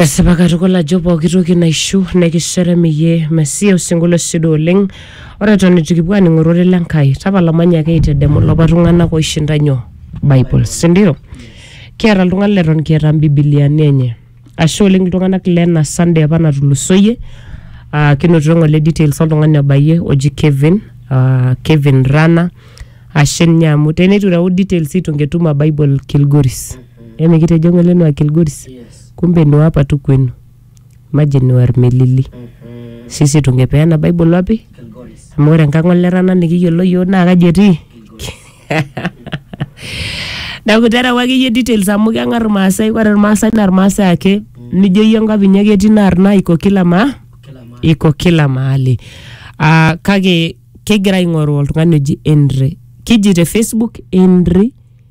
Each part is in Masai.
esipa katukul ajo pooki toki naishu nekisherem iyie mesia osinkolio sido oleng ore eton itu kipuo aning ororei le Nkai tapala manyaki aitedemu lapa tung'anak oishinda nyoo Bible sindio kiata iltung'anak leton kiata mbibiliani enye ashe oleng iltung'anak lena Sunday apa natulusoyie uh, kinotito ng'ole details oltung'ani obayie oji Kevin uh, Kevin Rana ashe ninye amu teneitu ireu details itu ngetum a Bible Kilgoris Eme kitejo ng'ole nua Kilgoris, kumbe nua apa tu kwenu. Maji nua Irmelili. Sisi tungepeana Bible wapi? Amu ore enkang' olerana nikiyiolo yiok naa kaji etii? Neeku tereu akeyie details amu keng'ar Irmaasai. Ore Irmaasai naa Irmaasai ake. Nijo iyie enkop inyi ake etii naa arna iko kila ma iko kila mahali. Ah kake kigira aing'oru oltung'ani oji Henry. Kiji te Facebook Henry.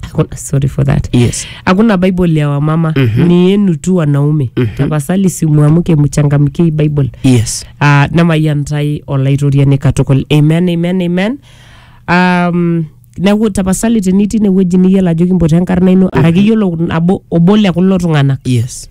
Hakuna- sorry for that Yes. hakuna bible ya wamama mm-hmm. ni yenu tu wanaume mm-hmm. tafasali simwamke mchangamkie hii bible Yes. uh, namayantai olaitoriani katukul amen amen amen um, neaku tapasali tenitii inewueji niyiolo ajo kimpotu enkarna ino araki iyiolo nabo obo le kulo tung'anak Yes.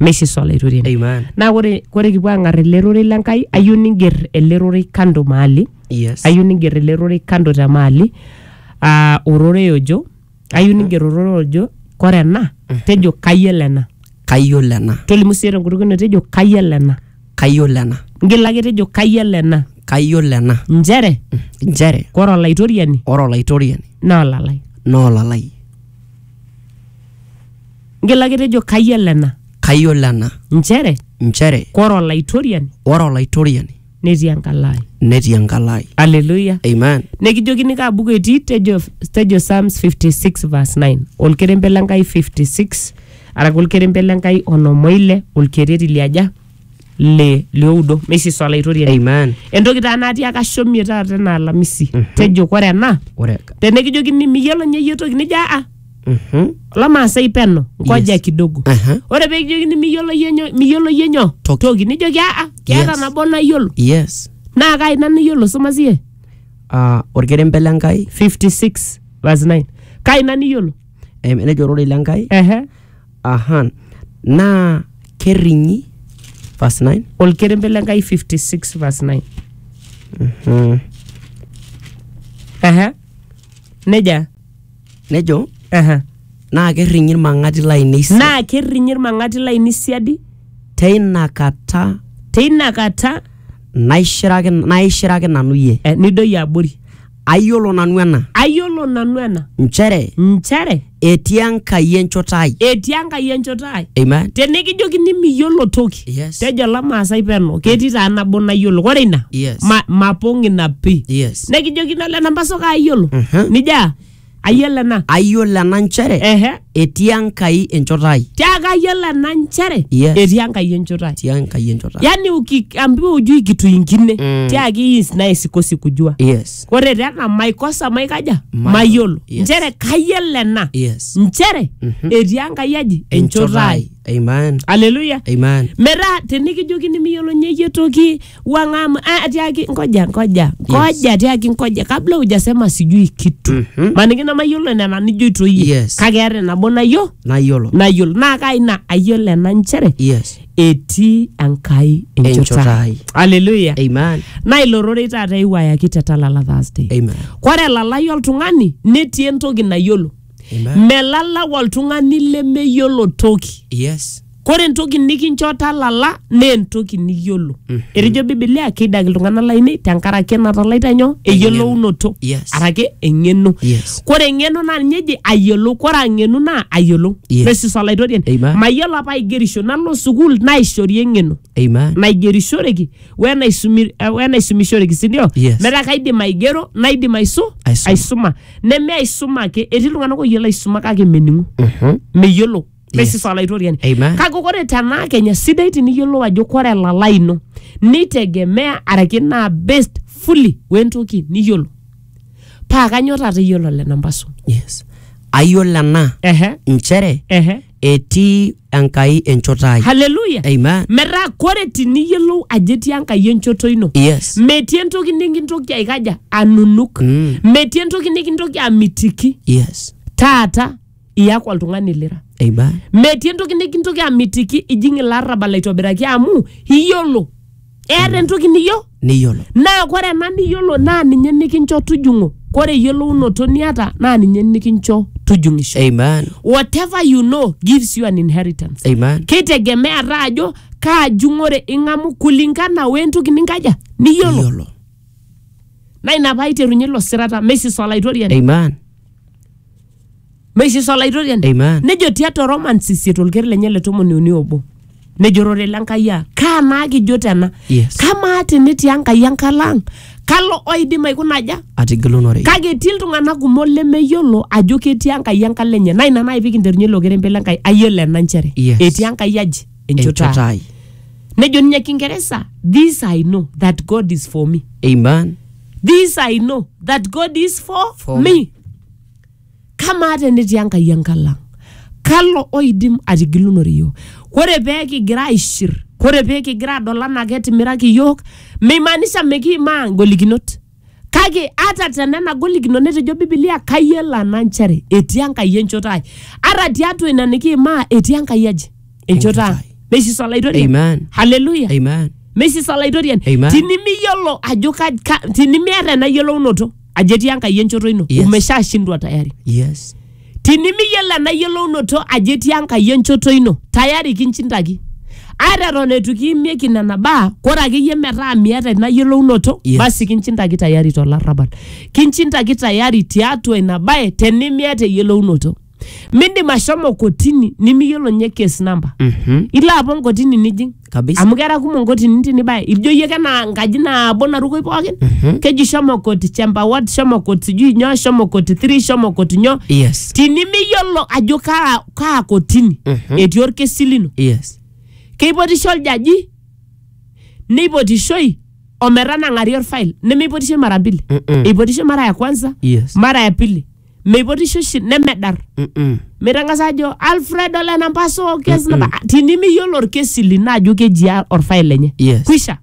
meisisa olaitoriani Amen. naa ore ore kipuo aang'ar ele rorei le Nkai ayieu niger ele rorei kando maali Yes. ayieu niger ele rorei kando te maali aa ororei ojo ayieu niger ororei ojo kore ena tejo kayiolo ena Kayiolo ena. tolimu sii tenkutuk ino tejo kayiolo ena Kayiolo ena. ngila ake tejo kayiolo ena Kayiolo ena. nchere Nchere kore olaitoriani ore olaitoriani naa olalai naa olalai. Ngila ake tejo kayiolo ena kayiolo ena nchere nchere kore olaitoriani ore olaitoriani netii enkalo ai. netii enkalo ai Aleluya. amen Nekijokini kaa buku etii tejo, tejo Psalms 56 verse 9 olkerembe le Nkai 56 araki olkerembe le Nkai onom oile olkereri liaja le lioudo meisiso alaitoriani Amen. entoki taa natii ake ashomie taata ena alamisi tejo kore ena Ore tenekijokini miyiolo ninye iyie toki nijo aa Mhm. olamaasai peno ngoja Yes. kidogo Aha. ore peekijokini miyiolo iyie nyo miyiolo iyie nyo Toki. toki nijoki aa keeta Yes. nabo nayiolo Yes. naa kai ina niyiolo soma siye Ah, orkerembe le Nkai, 56 verse 9 kai ina niyiolo em, nejo ororei le Nkai, ehe Aha. Naa kerring'i verse 9. olkerembe le Nkai 56 verse 9. Mm. Aha. Neja. Nejo Aha. naa kerring'i ilmang'ati lainei sa- Naa kerrinyi ilmang'ati lainei siadi teina kata teina kata naishiraki naishiraki nanu iyie. eh, nidoyio abori. Ayiolo nanu ena, ayiolo nanu ena nchere nchere etii Enkai enchoto ai. etii Enkai enchoto ai. Amen. Tenikijokini miyiolo toki, Yes. tejo Lamaasai peno, ketii taa nabo nayiolo. Ore ina, Yes. ma, mapong ina pi. Yes. Nekijokini ole Nambaso kaayiolo, Mhm. nijaa ayiolo ena ayiolo ena nchere ehe etii enkai enchoto ai tiaku ayiolo ena nchere Yes. etii enkai enchoto ai etii enkai enchoto ai yani ukiambiwa ujui kitu ingine Mm. tiaki hii is naye sikosi kujua yes ore tena maikosa maikaja Mayiolo. mayiolo Yes. nchere kayiolo ena yes nchere Mhm. etii enkai aji enchoto ai amen aleluya amen metaa tenikijokini miyiolo nyeyie toki wang'amu ah, ati aki ngoja ngoja ngoja ati aki ngoja kabla hujasema sijui kitu Mhm. maniki namayiolo nena nijoito iyie Yes. kake eeta nabo nayiolo nayiolo nayiolo naa kai ina ayiolo ena nchere yes etii enkai Enchota enchota ai. ai aleluya amen naa ilo rorei taata eiwayaki te talala thursday amen kore elalai oltung'ani netii entoki nayiolo amen melalau oltung'ani lemeyiolo toki yes kore entoki nikincho talala naa entoki niyiolo etejo bibilia keidaki iltung'anak lainei tenkaraki enatalaita nyoo eyiolounoto Yes. araki eng'eno Yes. kore eng'eno naa ninye eji ayiolou kore ang'enu naa ayiolou Yes. presis olaitoriani Amen. mayiolo apa aigerisho nalo sukuul naishori eng'eno Amen. naigerishoreki wenaisumi- eh, wenaisumishoreki sindio Yes. metaa kaidim aigero naidim aisu Aisuma. aisuma neme aisuma ake etii iltung'anak oyiolo aisuma kake mening'u Mhm. meyiolo basis olaitoriani Amen. kake ore tenaa kenya sidai tiniyiolou ajo kore elalai ino nitegemea araki naa based fully wentoki niyiolo paa kanyo taata iyiolo lena mbasu yes ayiolo ena ehe nchere ehe etii enkai enchoto ai haleluya Amen. metaa kore tiniyiolou ajo etii enkai enchoto ino yes metii entoki nikintoki aikaja anunuk Mm. metii entoki nikintoki amitiki yes taata iyaku oltung'ani lira Eiba. metii entoki nikintoki amitiki ijing ilarrabal aitobiraki amu iyiolo eeta entoki niyiolo Niyiolo. naa kore ena niyiolo naa ninye nikincho tujung'o kore eyiolounoto niata naa ninye nikincho tujung'isho Amen. whatever you know gives you an inheritance Amen. keitegemea taa ajo kaa jung'ore ing'amu kulingana wentoki ninkaja niyiolo Niyiolo. naa ina paaiterunye ilo sirata mesis olaitoriani Amen. meishisho olaitoriani Amen. nejo tiatua romans isiet olker lenye le tomoni uni obo nejo rore le nkai aa kaa naa kijo tena Yes. kamaa tenetii enkai enkalo ang kalo oidim aikuna aja atigilunore kake etii iltung'anak kumok lemeyiolo ajo ketii enkai enkalo enye naa ina nai pikinterunye ilo kerembe le nkai ayiolo ena nchere Yes. etii enkai aji enchoto ai. enchoto ai nejo ninye kingeresa this i know that god is for me amen this i know that god is for, For me. me kamaa tenetii enkai enkalang kalo oidim atigilunore iyiook ore pee kigira aishir ore pee kigira adol anaa ketimiraki iyiook meimaanisha mikiimaa ingolikinot kake ata tenena golikinot netejo bibilia kayiolo ena nchere etii enkai enchoto ai ata tiatua ina nikiimaa etii enkai aji enchoto ang ai. meisisa olaitoriani Amen. haleluya Amen. meisisa olaitoriani Amen. tinimiyiolo ajo ka- ka- tinimiata ena yiolounoto ajo etii enkai enchoto ino Yes. umeshashindwa tayari Yes. tinimiyiolo ena yiolounoto ajo etii enkai enchoto ino tayari kinchindaki ata eton eitu kiimieki nena baa kore akeyie metaa miata ina yiolounoto Yes. basi kinchindaki tayari tolarrabal kinchindaki tayari tiatua ina bae tenimiata eyiolounoto mindim ashomo kotini nimiyiolo ninye case number Mhm. ilo apa nkotini nijing Kabisa. amu kera kumok nkotini tinibaya ijo iyie kena nkaji nabo narukoi pookin Mhm. keji shomo koti chamber ward shomo koti sijui nyoo shomo koti three shomo koti nyoo Yes. tinimiyiolo ajo kaa, kaa kotini Mhm. etii orkesi lino Yes. keipotisho oljaji neipotishoi ometanang'ari orfail nemeipotishoi mara mbili Mm-mm. eipotishoi mara ya kwanza Yes. mara ya pili meipotisho oshi nemedar Mm-mm. mitangasa ajo alfred ole nampaso orkesi naba tinimiyiolo orkesi lino ajo keji a- orfail lenye Yes. kwisha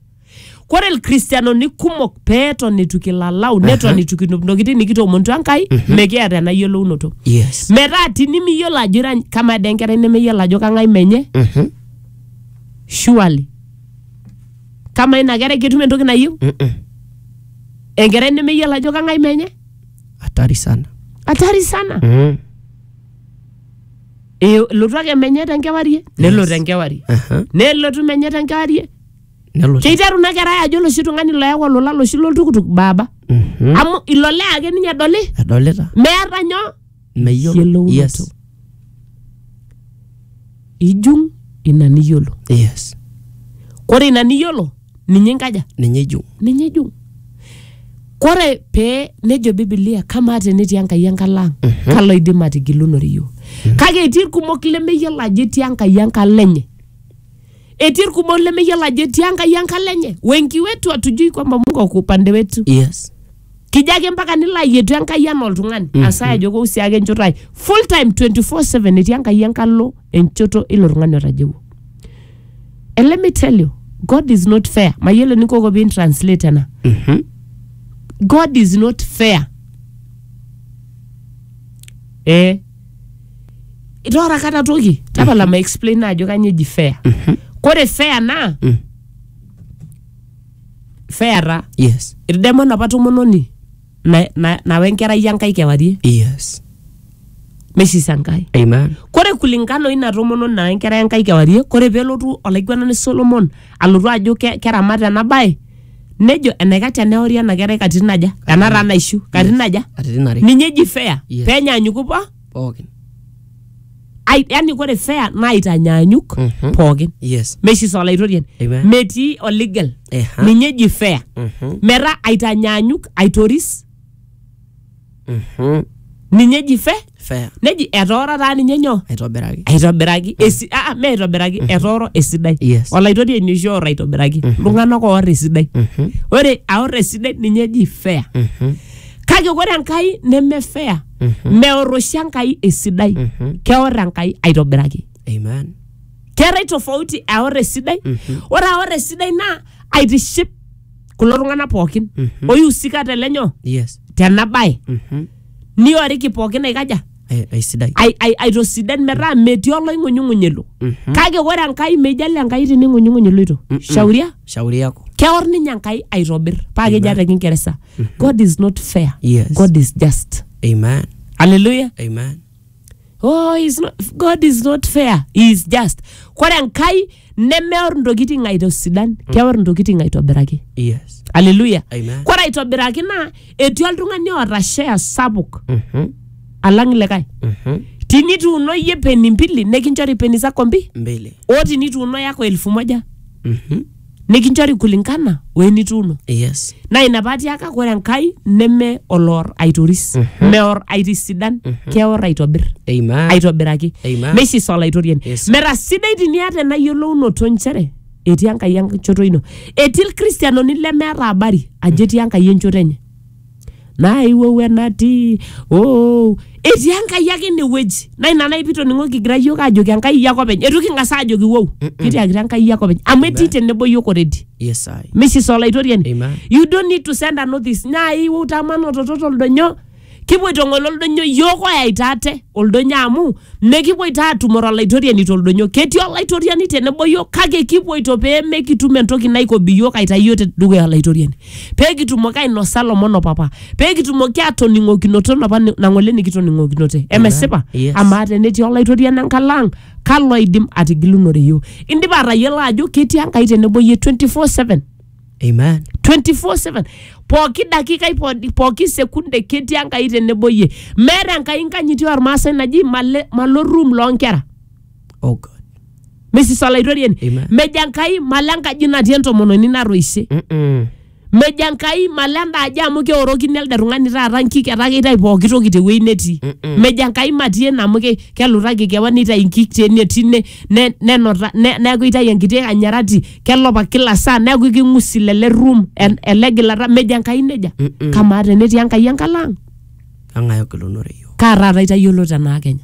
kore ilkristianoni kumok peeton etu kilalau neton etu kinup ntokitin nikitoomonutua enkai mekiata ena yiolounoto yes metaa tinimiyiolo ajo ira kamaa dee enkerai nemeyiolo ajo kang'ai menye Mhm. surely kamaa ina kerai ketum entoki nayieu Mm-mm. enkerai nemeyiolo ajo kang'ai menye hatari sana hatari sana mm. Eh, lotu ake menye tenkewarie nelo tenkewarie Aha. nelotu menye tenkewarie nelo keiteru ina kerai ajo loshi tung'ani loyau olola loshi loltukutuk baaba Mhm. amu ilo lee ake ninye edoli edolita meeta nyoo Meyiolo. eyiolounoto Yes. ijung ina niyiolo Yes. kore ina niyiolo ninye inkaja Ninye ijung. ninye ijung kore pee nejo bibilia kamaa tenetii enkai enkalo ang kalo idim atigilunore iyiok kake etii irkumok lemeyiolo ajo etii enkai enkalo enye etii irkumok lemeyiolo ajo etii enkai enkalo enye wengi wetu hatujui kwamba mungu ako upande wetu Yes. Kijo ake mpaka nilo ayietu Enkai anaa oltung'ani. Asaya ajo kou sii ake enchoto ai. Full time 24/7 etii Enkai enkalo enchoto ilo tung'ani otajeuo. And let me tell you, God is not fair. Mayiolo enikoko pin translate ena. Mhm. God is not fair. Eh. Itoora kata toki. Tapala ma explain ajo kanyo eji fair. Kore fair naa Mm. feata yes irdemo enapa tomononi na- na- nawa enkerai enkai kewarie yes neisisa enkai amen kore kulingana oina tomononi nawa enkerai enkai kewarie kore pelotu olaiguanani solomon alotu ajo ke- keramat ena bae nejo enaikash teneori ena kerai katitin aja ena taa naishu katitin aja katitin are ninye eji fea Yes. penyaanyuku po pookin Ai- yani ore fair naitanyanyuk Mhm. pookin yes meshi sa olaitorian Amen. metii oligel Eha. ninye eji fair Mhm. metaa aitanyanyuk aitoris Mhm. ninye eji fair fair neji etooro taa ninye nyoo aitobiraki aitobiraki esi- ah, ah, me aitobiraki etooro esidai Yes. olaitoriani oshi oor aitobiraki iltung'anak oor esidai Mhm. ore aor esidai ninye eji fair Mhm. kake ore enkai neme fair meor oshi enkai esidai keor enkai aitobiraki Amen. keetae tofauti aor esidai ore aor esidai naa aitiship kulo tung'anak pookin oihusika tele nyoo Yes. tena bae Mhm. nioriki pookin aikaja Ai- Aisidai. ai- ai- aitosidan metaa metii oloing'unyung'uny elo Mhm. kake ore enkai meijali enkai tining'unyung'uny iloito shauria Shauri yako. keor ninye enkai aitobir paa keji ata kingeresa god is not fair Yes. god is just Amen. haleluya Amen. oh he's not, god is not fair he is just kore enkai nemeor ntokitin aitosidan keor ntokitin aitobiraki Yes. haleluya Amen. kore aitobiraki naa etii oltung'ani oota share sapuk Mhm. alang likae Mhm. tinituuno iyie peni mbili nikinchori peni zako mbi Mbele. o tinituuno yako elfu moja Mhm. nikinchori kulingana o enituuno yes naa ina paatiaka ore enkai neme oloor aitoris meor aitisidan keor aitobir amen aitobiraki Amen. meisisa olaitoriani Yes. mera sidai tiniata ena yiolounoto nchere etii enkai enchoto ino etii ilkristianoni lemeeta habari ajo etii enkai enchoto enye naiwou enatii oh. etii enkai ake inewueji naa ina naipi toning'o kigira yiok ajoki enkai iyie ake openy etu king'as aajoki wou kitiakita enkai iyie ake openy amu etii tenebo yiok already Yes, I. Mrs. Olaitoriani. Amen. You don't need to send a notice. Nyai wou tamana ototo toldonyo. Kipoito ng'ole oldonyo yiok oyaita ate oldonyo amu mekipoito aatumore olaitoriani toldonyo. Ketii olaitoriani tenebo yiok kake kipoito pee mekitum entoki naikobi yiok aitayu yiok te dukuya olaitoriani. pee kitumoki ainosa lomon o papa pee kitumoki atoning'okinoto enapa ni- nang'ole nikitoning'okinote emesipa Yes. amaa tenetii olaitoriani enkalo ang kalo oidim atigilunore yiok indipa atayiolo ajo ketii enkai tenebo yie 24/7 Amen. 24/7 pooki dakikai po- pooki sekunde ketii enkai tenebo yie meeta enkai nkanyiti ormaasai naji male- malo room loonkera Oh God. misis olaitoriani Amen. mejo enkai malo enkaji natii entomononi natoishe Mm-mm. mejo enkai malo enda aji amu keorokini elde tung'ani taata nkik etaa keitayu pooki toki tewueji netii Mm-mm. mejo enkai matii ene amu ke- kelutaki kewan neitayu nkik tene tine ne- nenota ne- neeku eitayu enkiti anyarati kelopa kila saa neeku king'usi lele room en- ele gilata mejo enkai nejia Mm-mm. kamaa tenetii enkai enkalaang kang'ae ogilunore yiok kaa taata itayiolo tenaa kenya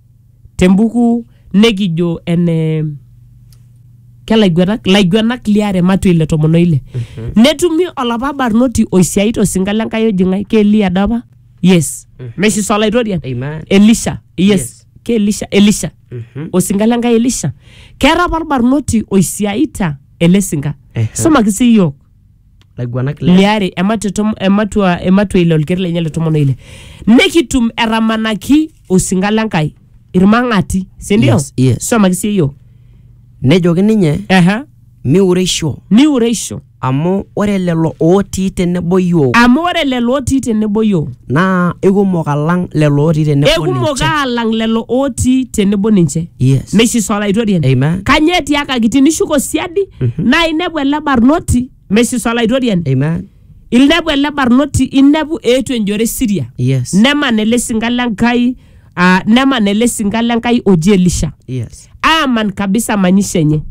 te mbuku nekijo ene kelaiguenak laiguenak liare matua ile tomon oile netumi olapa barnoti oisiai tosinka le Nkai oji ng'ae ke Eliya doi apa yes meshi solaitorian Amen. Elisha yes, Yes. ke Elisha Elisha Mhm. osinka le Nkai Elisha keeta apa olbarnoti oisiaita ele sinka Ehe. somaki sii iyiook laiguanak le liare ematua tom- ematua ematua ile olker lenye le tomon oile nikitum etamanaki osinka le nkai irmang'ati sindio Yes, yes. somaki sii yiok nejoki ninye Aha. miureisho niureisho amu ore lelo ootii tenebo yiok amu ore lelo otii tenebo yiok naa ikumok alang lelo otii tenebo ekumok ninche. aalang lelo otii tenebo ninche Yes. meshiso olaitoriani Amen. kanyoo etiakaki tinishuko siadi naa inepu ele barnoti meshiso olaitoriani Amen. inepu ele barnoti inepu eetu enjore siria Yes. nemana ele sinka le nkai uh, neman ele sinka le Nkai oji Elisha Yes. aaman kabisa manyisho enye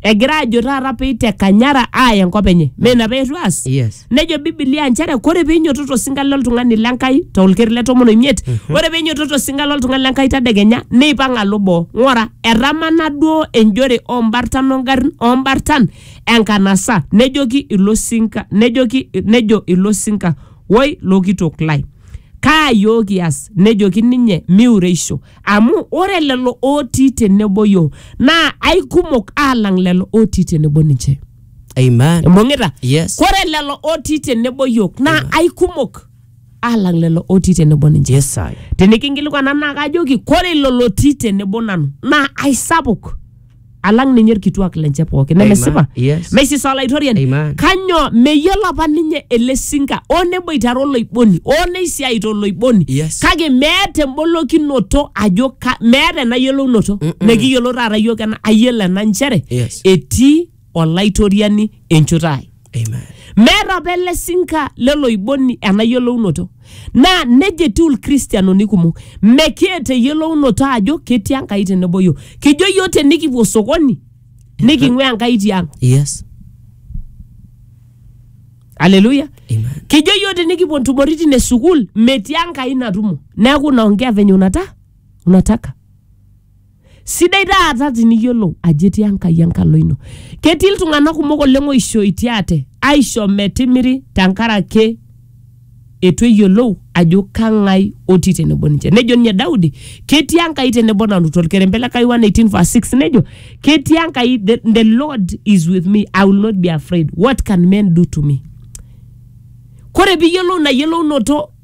egira ajo taata peiteka nyara aaya enkop enye mee ina peetu aas Yes. nejo bibilia nchere kore peinyototo osinka loltung'ani le Nkai tolkeri le tomon oimiet ore peinyototo osinka loltung'ani le Nkai tadekenya neipang alo boo ng'ora etamana duo enjore ombartan ongarrin ombartan enkanasa nejoki ilo sinka nejoki nejo ilo sinka woi lokitok lai Kaa iyiook kias? Nejoki ninye, Miureisho, amu ore lelo ootii tenebo iyiook naa aikumok aalang lelo ootii tenebo ninche. Amen. Imbung'ita? Yes. Ore lelo ootii tenebo iyiook naa aikumok aalang lelo ootii tenebo ninche. Yes, I. Tinikinkilikuana naa kajoki, ore ilo lotii tenebo nanu naa aisapuk. alang ninye irkituak lenche pooki nemesipa Yes. meisisa olaitoriani Amen. kanyoo meyiolo apa ninye ele sinka oo neboitare oloiboni oo neisiaita oloiboni Yes. kake meeta embolokinoto ajo ka- meeta ena yiolounoto mekiyiolo taata yiok ena ayiolo ena nchere Yes. etii olaitoriani enchoto ai Amen. meeta apa ele sinka leloiboni ena yiolounoto naa neja etiu ilkristianoni kumok mekiata eyiolounoto ajo ketii enkai tenebo yiok kijo yiok tenikipuo sokoni niking'ua enkai tiang Yes. aleluya Amen. kijo yiok tinikipuo ntumoritin e sukuul metii enkai natumo neeku naongea venye unata unataka Sidai taata tiniyiolou ajo etii Enkai enkalo ino. Ketii iltung'anak kumok oleng oishoitie ate aisho metimiri tenkaraki eitu eyiolou ajo kang'ae otii tenebo ninche. Nejo ninye Daudi, ketii Enkai tenebo nanu torkerembe le Kai 118 verse 6 nejo, ketii Enkai the, the Lord is with me, I will not be afraid. What can men do to me? Kore piiyiolou ina yiolounoto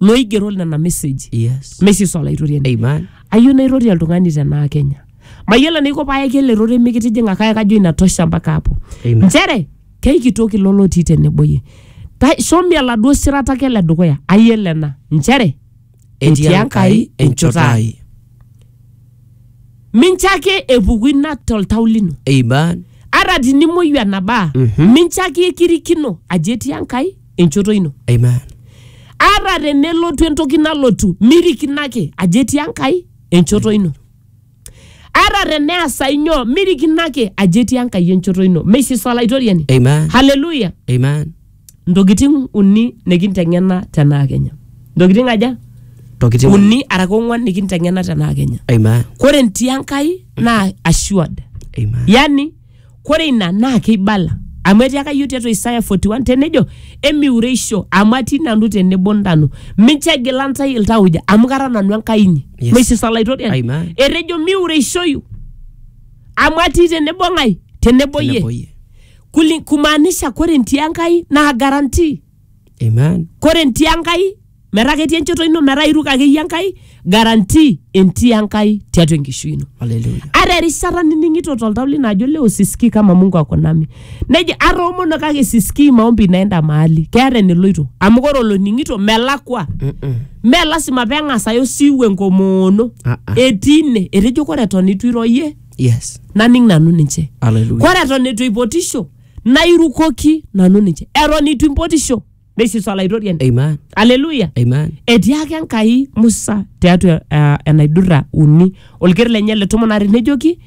looigero nena meseji Yes. mesis olaitoriani Amen. ayieu nairori oltung'ani tenaa kenya mayiolo enaiko paayaki ele rore mikitijing'a kake kajo inatosha mpaka hapo Amen. nchere keikitoki ilo lotii tenebo yie Ta- shomi oladuo sirata ake le dukuya ayiolo ena nchere etii enkai enchoto ai mincho ake epuku ina toltau lino Amen. ata tinimuoyu enabaa Mhm. mincho ake ekirikino ajo etii enkai enchoto ino Amen. ata tenelotu entoki nalotu mirikino ake ajo etii enkai enchoto ino ata teneasa inyoo mirikino ake ajo etii enkai enchoto ino meishiso olaitoriani Amen. haleluya Amen. ntokitin uni nikinteng'ena tenaa kenya ntokitin aja Tokitin. uni araka ong'uan nikinteng'ena tenaa kenya Amen. kore ntii enkai naa assured Amen. yani Kore ina naa keibala amu etiaka iyiook tiatua Isaya 41 tenejo emiureisho amu atii nanu tenebo ntano mincho egila ntae iltauja amu kara nanu Enkai inyi Yes. Mrs. Salaitorian Amen. etejo miureishoyu amu atii tenebo ng'ae tenebo Tenebo yie iyie. Kuli- kumaanisha kore ntii Enkai naa guarantee Amen. kore ntii enkai metaa ketii enchoto ino metaa iruk akeyie enkai garantii entii enkai tiatua enkishui ino Hallelujah. ata erishata nining'ito toltau lino ajo leo sisikii kama mungu ako nami neji atoomono kake sisikii maombi naenda mahali keeta eneloito amu kore oloning'ito melakwa Mm-mm. mee lasima peng'as aya osiwuo enkomoono Ah, ah. etii ine etejo kore eton itu iroyie Yes. naning nanu ninche Hallelujah. kore eton etu eipotisho nairukoki nanu ninche eton itu impotisho neisusa olaitoriani Amen. aleluya Amen. etiaka enkai musa tiatua uh, enaidurra uni olker lenye le tomon are nejoki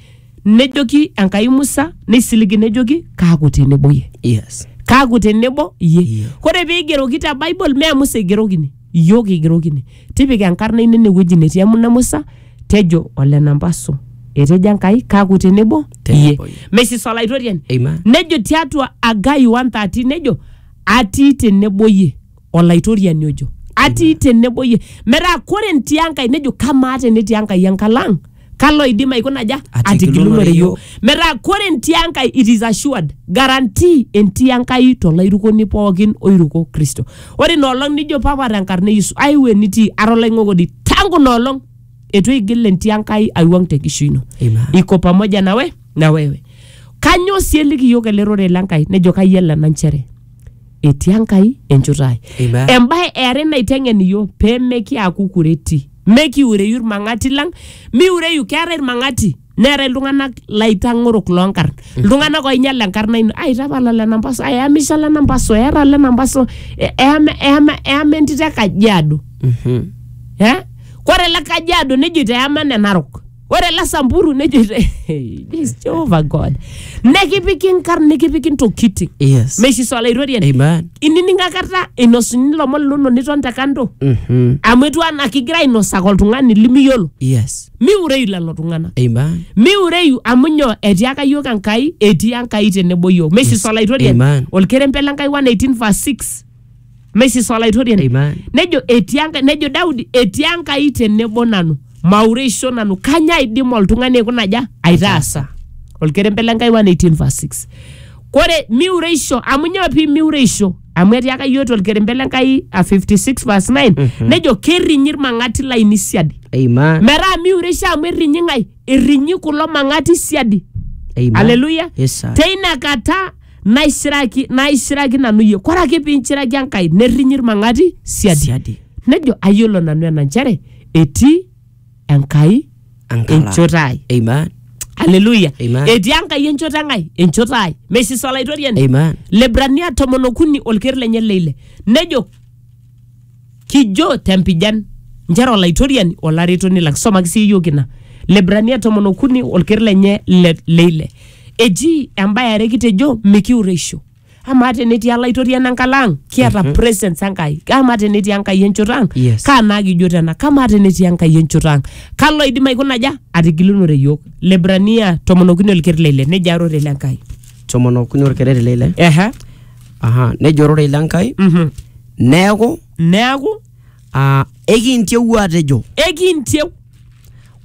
nejoki enkai musa neisiligi nejoki kaaku tenebo ye Yes. kaaku tenebo ye Yeah. kore peigeroki te bible mee musa eigerokini iyiook kigerokini tipika enkarna ino ene wueji netii emuna musa tejo ole namba so etejo enkai kaaku tenebo Tenebo iyie iyie. mesis olaitoriani Amen. nejo tiatua agai 130 nejo atii tenebo iyie olaitoriani ojo atii tenebo iyie metaa kore ntii enkai nejo kamaa tenetii enkai enkalang kalo oidim aikuna aja Atigilunore atigilunore iyiook. iyiook metaa kore entii enkai it is assured guarantee entii enkai tolairukoni pookin oiruko kristo ore ina olong nijo papa tenkarna e yesu aiu enitii ara olaing'okoni tangu ina olong etu eigil entii enkai aiwuang tenkishui ino Amen. iko pamoja nawe na wewe kanyoo sii eliki iyiook ele rorei le nkai nejo kayiolo ena nchere etii enkai enchoto ai Amen. embae eare naiteng'en iyiook pemekiaku kureti Mekiure yu ilmang'ati lang, miure yu keetae ilmang'ati neetae iltung'anak laitang'orok loo nkarn. Iltung'anak oinyal enkarna ino. Ai tapala lena mpaso, ai eyamisha lena mpaso, eeta lena mpaso, e- eyama eyama eyama entito e Kajiado. Eh? Kore ele Kajiado nejoito eyama ene Narok. ore ele samburu nejo "Jeez, Jehovah God nekipiki inkarn nikipiki ntokitin Yes. meishu swala irorie Amen. inining akata inosuni ilomon linono niton te kando Mhm. amu etiu anaa kigira ainosaka oltung'ani limiyiolo Yes. miureyu lelo tung'anak Amen. miureyu amu nyoo etiaka yiok enkai etii enkai tenebo yiok meishu swala irorie Amen. olkerempe le nkai 118 verse 6 Maisis Olaitoriani. Amen. Nejo etii Enkai, nejo Daudi etii Enkai tenebo nanu, maureisho nanu, kanya aidim oltung'ani aikuna aja aitaasa. Olkerembe le Nkai 118 verse 6. Kore miureisho, amu nyoo pii miureisho? Amu etiaka iyiook tolkerembe le Nkai a 56 verse 9, nejo kerrinyi ilmang'ati lainei siadi. Amen. Metaa miureisho amu errinyi ng'ai? Errinyi kulo mang'ati siadi. Amen. Haleluya. Yes, sir. Teina kata naishiraki naishiraki nanu iyie kore ake piinchiraki enkai nerrinyi ilmang'ati siadi siadi nejo ayiolo nanu ena nchere etii enkai Ankala. enchoto ai Amen. haleluya Amen. etii enkai enchoto eng'ai enchoto ai mesis olaitoriani Amen. lebrania tomon okuni olker lenye leile nejo kijo tempijan nchere olaitoriani olaretoni lang somaki sii iyiook ina lebrania tomon okuni olker lenye le, leile eji embae are kitejo mikiureisho amaa tenetii olaitoriani enkalo ang kiata mm-hmm. presence enkai amaa tenetii enkai enchoto ang Yes. kaa naa kijo tena kamaa tenetii enkai enchoto ang kalo idim aikuna aja atigilunore iyiook lebrania tomon okuni olker leile nejia arore le nkai tomon okuni orkereri leile ehe Aha, nejo ororei le Nkai Mhm. neeku neaku ah, ekintieu atejo ekintieu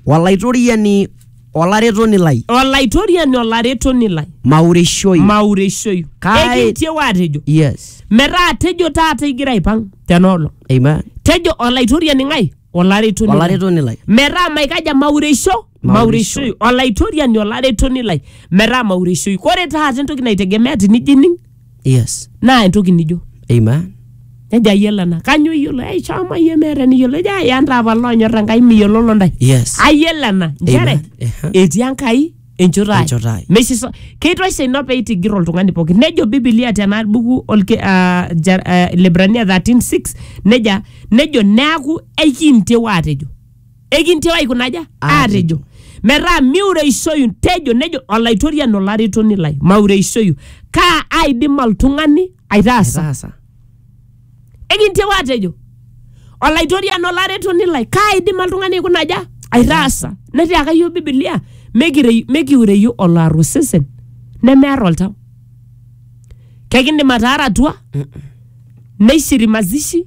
olaitoriani olaretoni lai olaitoriani olaretoni lai maurishoi maureshoi Kai- ekintieu atejo yes metaa tejo taata igira aipang tenoolong amen tejo olaitoriani ng'ae olaretoni lai. olaretoni lai metaa maikaja maureisho Maureisho. maureishoi olaitoriani olaretoni lai metaa maureishoi kore taata entoki naitegemea tinijining yes naa entoki nijo amen nejo ayiolo ena kanyo iyiolo ei shomo iyie meeta eniyiolo ejo aya ntaapa loonyor enkai miyiololo ntae yes ayiolo ena nchere Amen. Ehe. etii enkai enchoto ai Enchoto ai. Meisisa- keitosha ina pee eitigir oltung'ani pooki nejo bibilia tena buku olke, ah, Jer- ah, Ilebrania 13:6 neja nejo neaku ekintieu aatejo ekintieu aikunaja aatejo metaa miureishoyu tejo nejo olaitoriani olaretoni lai maureishoyu kaa aidim oltung'ani aitaasa Taasa. Ekintieu aatejo, Olaitoriani olaretoni lai, kaaidim oltung'ani aikuna aja? Aitaasa. Netiaka iyiook Bibilia, "Mikirei- mikiureyu oloar osesen nemear oltau. Kekindim ataara atua, neishiri mazishi,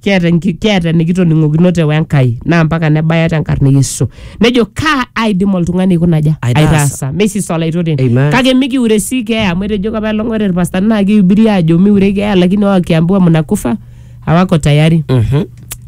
kiata enki- kiata enikitoning'okinote wenkai naa mpaka nebaya tenkarna e yesu nejo kaa aidim oltung'ani aikuna aja Aitaasa. aitaasa mesis olaitoten Amen. kake mikiure si keeya amu etejo kapa elong'ore irpastani naa kihubiri ajo miure keeya lakini wakiambiwa mnakufa hawako tayari Mhm.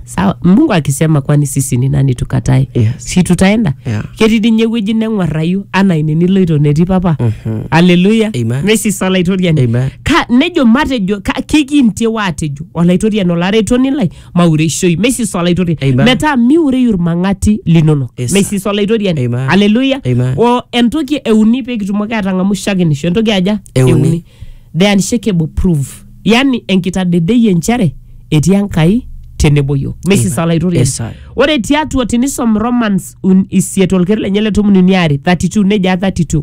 sawa mungu akisema kwani sisi ni nani tukatae Yes. si tutaenda Yeah. ketii dinye ewueji neng'uarrayu anaa ine niloito netii papa Mhm. aleluya Amen. mesis olaitoriani Amen. Ka- nejo matejo ka- kikintie waatejo Olaitoriani olaretoni lai, maureishoi. Meisisa Olaitoriani. Amen. Metaa miureyu ilmang'ati linonok. Yes, sir. Meisisa Olaitoriani. Amen. Haleluya. Amen. O entoki euni pee kitumoki aatang'amu shakenisho. Entoki aja? Euni. The unshakable proof. Yaani enkitadedeyie nchere etii Enkai tenebo yiok. Meisisa Amen. Olaitoriani. Yes, sir. Ore tiatua tinisom Romans un- isiet olkeri lenye le tomon uni are 32 nejaa 32.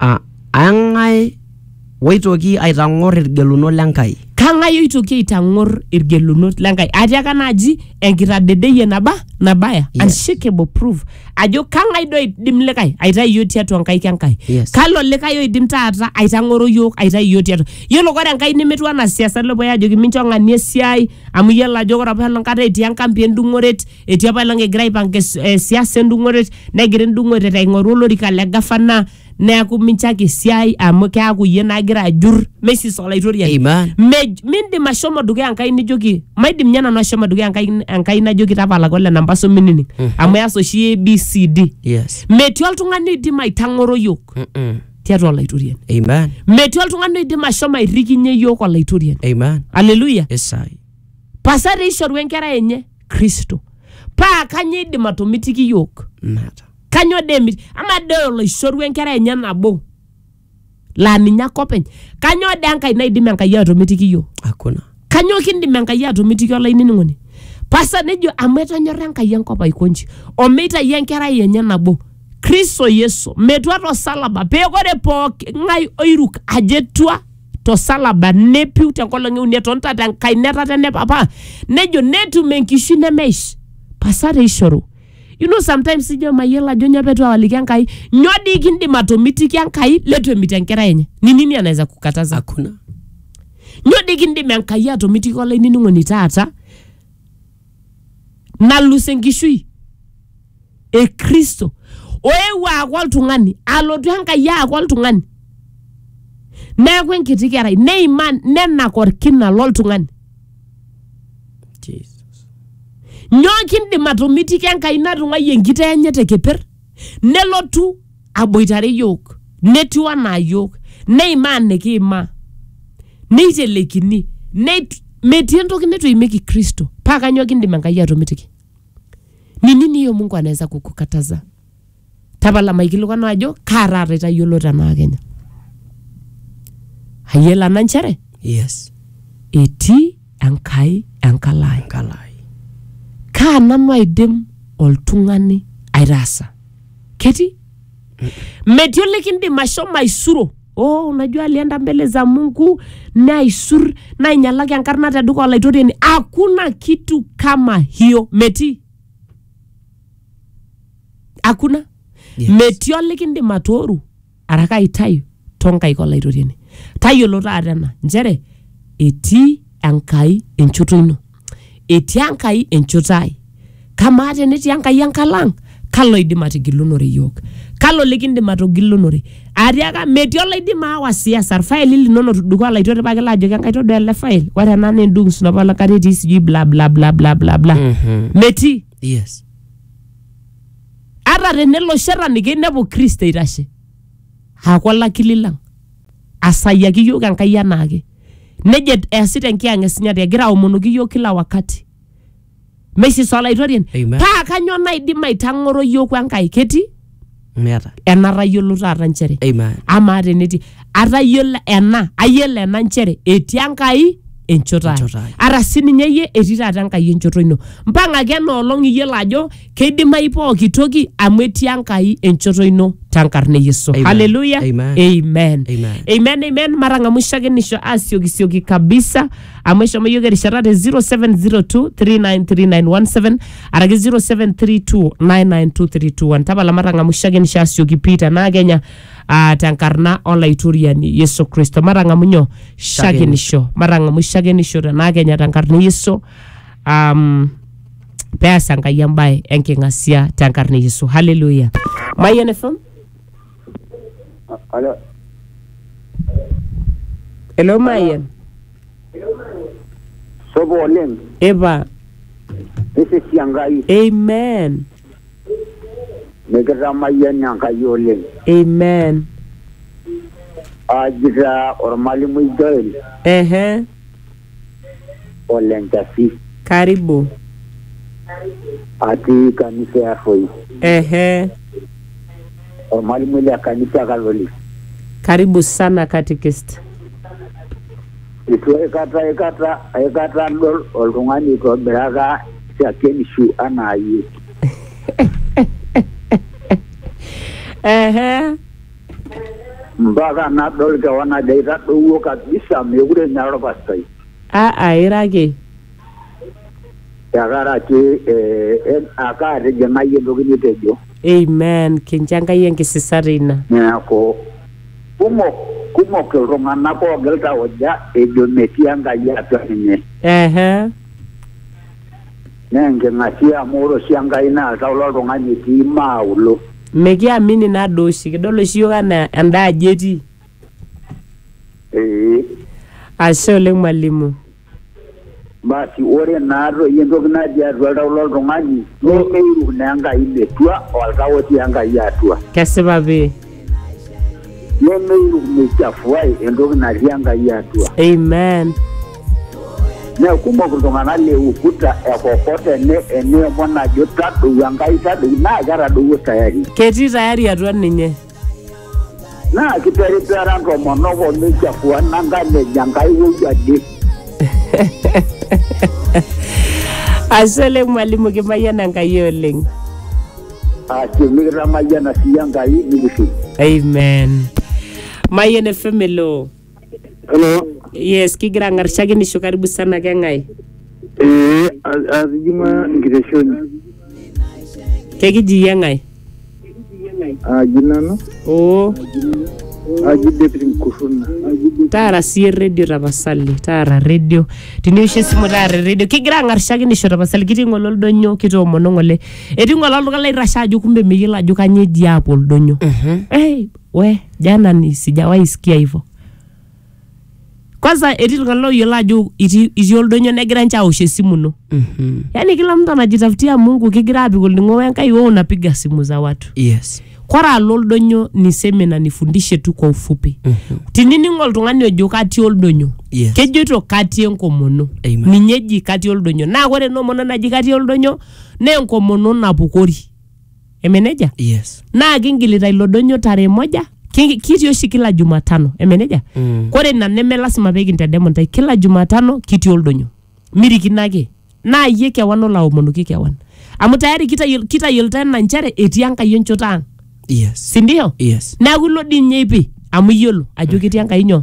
Aa eng'ae oitoki aitang'or ilgelunot le Nkai? Kang'ae oitoki aitang'or ilgelunot le Nkai? Atiaka naaji enkitadedeyie naba nabaya Yes. unshakable proof ajo kang'ae doi oidim likae aitayu iyiook tiatua nkaik e Nkai? Yes. Kalo likae oidim taata aitang'oro iyiook aitayu iyiook tiatua? Yiolo ore Enkai nemetiu anaa siasani loopuoi aajoki mincho ng'ania esiai amu iyiolo ajo ore apa ena kata etii enkampi endung'oret Etii apailong egira aipanga es- eh, siasa endung'oret negira endung'oret aing'oru olorika le gavana neaku minchaki esiai amu keaku iyie nagira ajur mesis olaitoriani Amen. Mej- mindim ashomo dukuya enkai nijoki maidim nye nanu ashomo dukuya enkai, enkai najoki tapalaka ole namba so minining amu eas oshi abcd Yes. metii oltung'ani oidim aitang'oro yiok Mm-mm. tiatua olaitoriani Amen. metii oltung'ani oidim ashomo airrikinye yiok olaitoriani Amen. aleluya Yes, I. pasa teishoru enkerai enye kristo paa kanyoo eidim atomitiki yiok Nata. kanyoo dee emit amaa dee oloishoru enkerai enye nabo laa ninye ake openy kanyoo dee enkae naidim enkai atomitiki yiok Hakuna. kanyoo kindim enkai atomitiki olainining'oni pasa nejo amu etonyorra enkai enkop aiko nji omeitai enkerai enye nabo kristo yesu metua tosalaba pee ore pooki ng'ae oiruk ajo etua tosalaba nepiu tenkolong euni etonta tenkai netata ene papa nejo netum enkishui nemeish pasare ishoru you know sometimes ijo mayiolo ajo nyoo petu awaliki enkai nyoo dii kindim atomitiki enkai letu emit enkerai enye ni nini anaweza kukataza hakuna nyoo dii kindim enkai atomitiki olainining'oni taata nalus enkishui e kristo oewuo aaku oltung'ani alotu enkai aaku oltung'ani neeku enkiti kerai neimaa nenak orkina loltung'ani Jesus. nyoo kindim atomitiki enkai natung'ayie enkitaa enye te keper nelotu aboitare yiok netiu anaa yiok neimaa nikiimaa neitelekini neit- metii entoki neitu eimieki kristo paa kanyoo kindim enkai atomitiki Ni nini hiyo Mungu anaweza kukukataza? Tapala maikilikuanu ajo kaa taata itayiolo tenaa Kenya. Ayiela na nchere Yes. etii Enkai enkalae. Kalai. Kaa nanu aidim oltung'ani aitaasa? Ketii metii olikindim ashomo aisuro oh, unajua alienda mbele za mungu naisur nainyalaki enkarna te duka olaitoriani hakuna kitu kama hiyo metii hakuna Yes. metii olikindim atooru araka aitayu tonkaik olaitoriani tayiolo taata ena nchere etii Enkai enchoto ino? Etii Enkai enchoto ai? Kamaa tenetii Enkai enkalo ang', kalo oidim atigilunore iyiook? Kalo likindim atogilunore? Atiaka metii oloidim aawa siasa irfaili linono tudung'o alaitoki pakilo ajoki Enkai todua ele file, ore ena naa endung' snopa olakata etii sijui bla bla bla bla bla bla. Metii. Yes. Ata tenelo shetani keinepu Kristo eitashe aaku olakili lang', asayaki iyiook Enkai enaake. Nejo et- easita enkiyang esinyati egira aomonoki iyiook kila wakati. Meisisa olaitoriani. Amen. Paa kanyoo naidim aitang'oro iyiook Enkai ketii Meeta. enatayiolo taata nchere. Amen. Amaa tenetii atayiolo ena ayiolo ena nchere etii Enkai enchoto ai. Enchoto ai. Ara sininye iyie etii taata Enkai enchoto ino. Mpang'aki ena olong iyiolo ajo keidimayu pooki toki amu etii enkai enchoto ino tenkarna e yesu Amen. haleluya Amen. amen Amen. amen amen matang'amu shakenisho asiokisioki kabisa amu eshomo yiok erishata te 0702393917 araki 0732992321 tapala matang'amu shakenisho asioki pii tenaa kenya uh, tenkarna olaitoriani yesu kristo matang'amu nyoo shakenisho matang'amu shakenisho tenaa kenya tenkarna e yesu um, peas enkai embae enking'asia tenkarna e yesu haleluya mayian fm Alo, elo mayian sopo oleng, ipa nisisi Enkai, amen nikitamayian Enkai oleng. amen Aji taa ormalimui Joel, ehe ole Nchasi. Karibu. Atii kanisa e Arroi. Ehe. Ormalimui le kanisa e Kaloli. Karibu sana katikist. Eitu aikata aikata aikata adol oltung'ani oitobiraka shakenishu anaa iyie. Ehe. Mpaka nadol kewan ajo aitadowuo kabisa mekure enya olpastai. Aa ira ake. Tenkaraki ake atijing'a iyie entoki nitejo. Amen. Kincho Enkai enkisisa teina. Neaku, kumok, kumok iltung'ana oogil tauja ejo metii Enkai atua ninye. Ehe. Naa enking'asia amu ore oshi Enkai naa oltau loltung'ani etii maa ulo. Mikiamini ina doo oshi, kidol oshi iyiook anaa enda aji etii. Ee. Ashe oleng mwalimu. Basi ore naa toi entoki natii atua oltau loltung'ani nemeiruk naa Enkai metua oltau otii Enkai atua. Kesipa pii. nemeichafuai entoki natii Enkai atua. Amen. Naa kumok iltung'anak le ukuta ekokot ene eneemon ajo tadou Enkai tadou naa ketadowuo tayari. Ketii tayari atua ninye. Naa kiperipera ntomonok o meichafua nankan ejo Enkai wou ade. Ashe oleng mwalimu kimayiana Enkai oleng. Ashe mikitamayiana sii Enkai nikishiu. amen mayen fm elo Hello. yes kigira ang'arishaki nisho karibu sana keng'ae Eh, atijing'a enkiteshoni. kekiji iyie ng'ae Aji nanu, oo aji David Nkuruna. taara siyie redio tapasali taara redio tiniwosh esimu taara redio kigira ang'arishaki nisho tapasali kitii ng'ole oldonyo kitoomon ng'ole etii ngole oltung'ani lairrashe ajo kumbe meyiolo ajo kanyoo eji aapuo oldonyo hey, we jana ni sijawahi sikia hivyo kwanza etii iltung'anak loyiolo ajo itii itii oldonyo negira ninche awosh esimu ino yaani kila mtu anajitafutia mungu kigira apik olning'o wenkai wewe unapiga simu za watu yes kore alo oldonyo ni semina nifundishe tu kwa ufupi tinining oltung'ani ojo katii oldonyo Yes. kejoito katii enkomono Amen. ninye eji katii oldonyo naa kore ena omono naji katii oldonyo naa enkomono napukori eme nejia yes naa kingilita ilo donyo tarehe moja ki- kitii oshi kila jumatano eme nejia Mm. kore ina neme lasima pee kintedemu intae kila jumatano kitii oldonyo mirikino ake naa iyie kewan olaomonoki kewan amu tayari kitayiol- kitayiolita ena nchere etii enkai enchoto ang yes sindio yes neeku ilo dii ninye ipi amu iyiolo ajo ketii enkai nyoo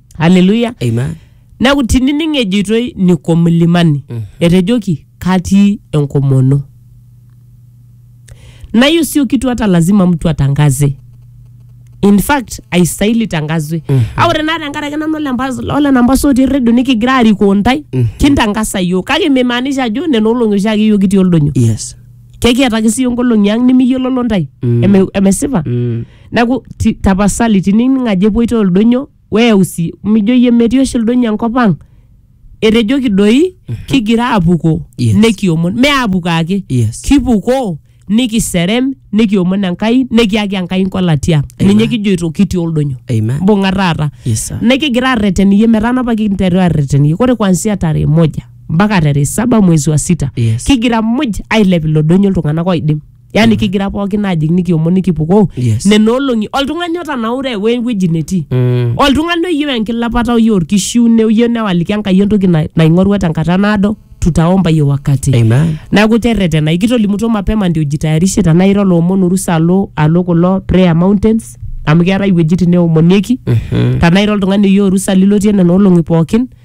haleluya Amen. neeku tinining ejoitoi niko mlimani etejoki katii enkomono na hiyo sio kitu hata lazima mtu atangaze in fact aisaili tangazwe a ore naa tenkaraki nanu ole Mbas- ole nambasa otii redio nikigira arikoo ntae kintangasa yiok kake mimaanisha ajo nena olong'i oshiake yiok kitii oldonyo Yes. kekiataki sii nkolong'i ang nimiyiololo ntae Eme- emesipa Mm. Neaku ti- tapasali tinining ajo epuoito ildonyo weyau sii mijo iyie metii oshi ildonyo enkop ang etejoki doi kigira apuko Yes. nekiomon me apuko ake Yes. kipuko nikiserem nikiomon enkai nikiaki enkai nkolatia Amen. ninye kijoito kitii oldonyo Amen. mbung'a taata Yes, sir. nikigira arreten iyie metaa napa kinteru arreten iyie ore kuanzia tarehe moja mpaka tarehe saba mwezi wa sita Yes. kigira muj ailep ilo donyo iltung'anak oidim yani kigira pookin ajing nikiomon nikipukoo Yes. nena olong'i oltung'ani otanaure we wueji netii Mm. oltung'ani oyieu enkilapata oyieu orkishiune oyieu newaliki enkai entoki na- naing'orua tenkata naado tutaomba hiyo wakati Amen. neeku terretena ikitolimutuo mapema ndio jitayarishe tenaa ira oloomon orusa alo alo kulo prayer mountains amu keetae iwuejitin neomonieki Mhm. tenaa ira oltung'ani oyieu orusa lilotie nena olong'i pookin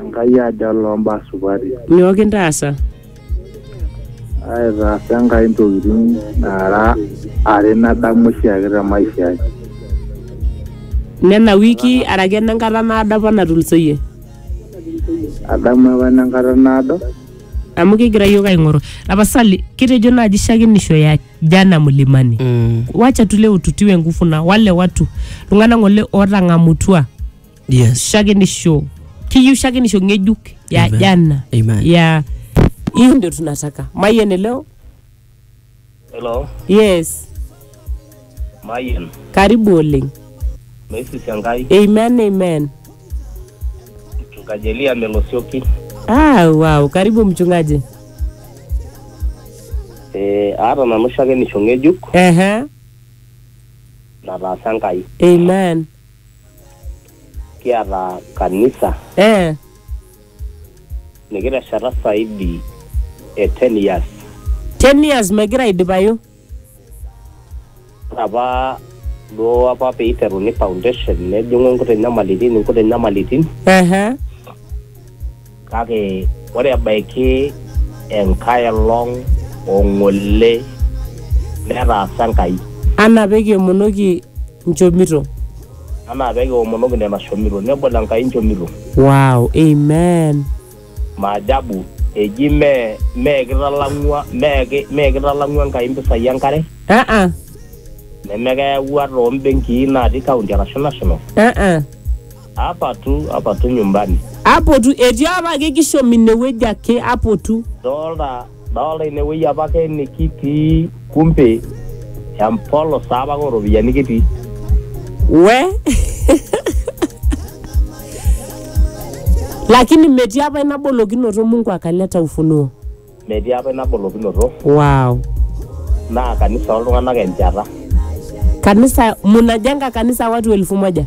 Enkai aja loo mbaa supati. Nyoo kintaasa? Aitaasa Enkai ntokitin naara are nadamu oshiake te maisha ai. Nena wiki araki ene nkata naado apa natulusoyie? Adamu apa ene nkata naado. Amu kigira iyiook aing'oru. Tapasali, kitejo naaji shakenisho ya jana mlimani. Wacha tule ututiwe nguvu na wale watu iltung'anak ng'ole ootang'amutua. yes shakenisho kiyieu shakenisho ng'ejuk ya Amen. jana Amen. ya hiyo ndio tunataka mayian leo Hello, yes Mayen, karibu oleng Messi Shangai, amen amen mchungaji Elia Melosioki. ah, wow karibu mchungaji Eh, aata nanu oshiake nisho ng'ejuk ehe nataasa Enkai. amen kiata kanisa eh, nikitesheta saidi e 10 years 10 years megira aidipayu ore apa duo apa peiteruni foundation nejing'u nkuti nyamalitin nkuti nyamalitin ehe Kake ore ebaiki enkae olong o ng'ole netaasa Enkai. Anaa pee kiomonoki nchomito. Anaa pee kiomonoki nena shomito. Nebol Enkai nchomito. Wow, Amen. Maajabu, eji mee kitalang'ua mee kitalang'ua Enkai mpisai e nkare. Uh-uh. Neme keyawua too mbenkii natii county arashu national. Uh-uh. Apatu, apatu nyumbani. Apotu, etii apake kishom inewueji ake, apotu. Doolta, doolta inewueji apake nikitii, kumbe empolos taa apake ooropiyiani kitii. We? Lakini metii apa ina bolokinoto Mungu akaleta ufunuo. Metii apa ina bolokinoto. Wow. Naa kanisa ooltung'anak enchata. Kanisa, munajenga kanisa watu elfu moja?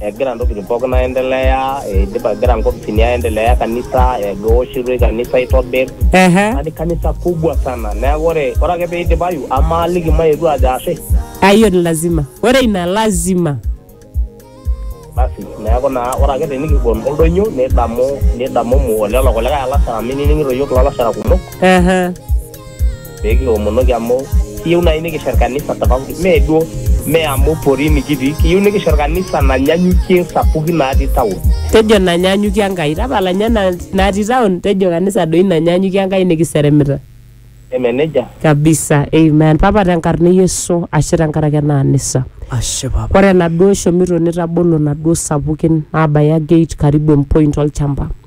egira ntokitin pookin aendelea eidipa egira nkopisini aendelea kanisa eoshitoi kanisa aitobir Ehe. yani kanisa kubwa sana neeku ore ore ake peidipayu amaaliki mayetu ajo ashe Ah, hiyo ni lazima. Ore ina lazima. basi neeku naa ore ake tenikibol oldonyo nidamu nidamumu olelo kulikae alashara minining'ito yiok ilalashara kumok Ehe. pee kiomonoki amu kiyieu naaji nikishet kanisa tofauti mee duo mee amu porini kitii kiyieu nikishet kanisa nanyanyukie sapukin natii town tejo nanyanyukie enkai tapala nye na- natii town tejo kanisa doi nanyanyukie enkai nikiseremita eme nejia kabisa amen papa tenkarna e yesu ashe tenkaraki ena anisa Ashe papa. ore enaduo shomito nitabolo naduo sapukin nabaya gate karibu empoint olchamba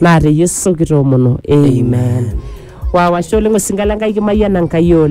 Naa te Yesu kitoomono. Amen. Wow, ashe oleng osinka le Nkai kimayiana Nkai oleng.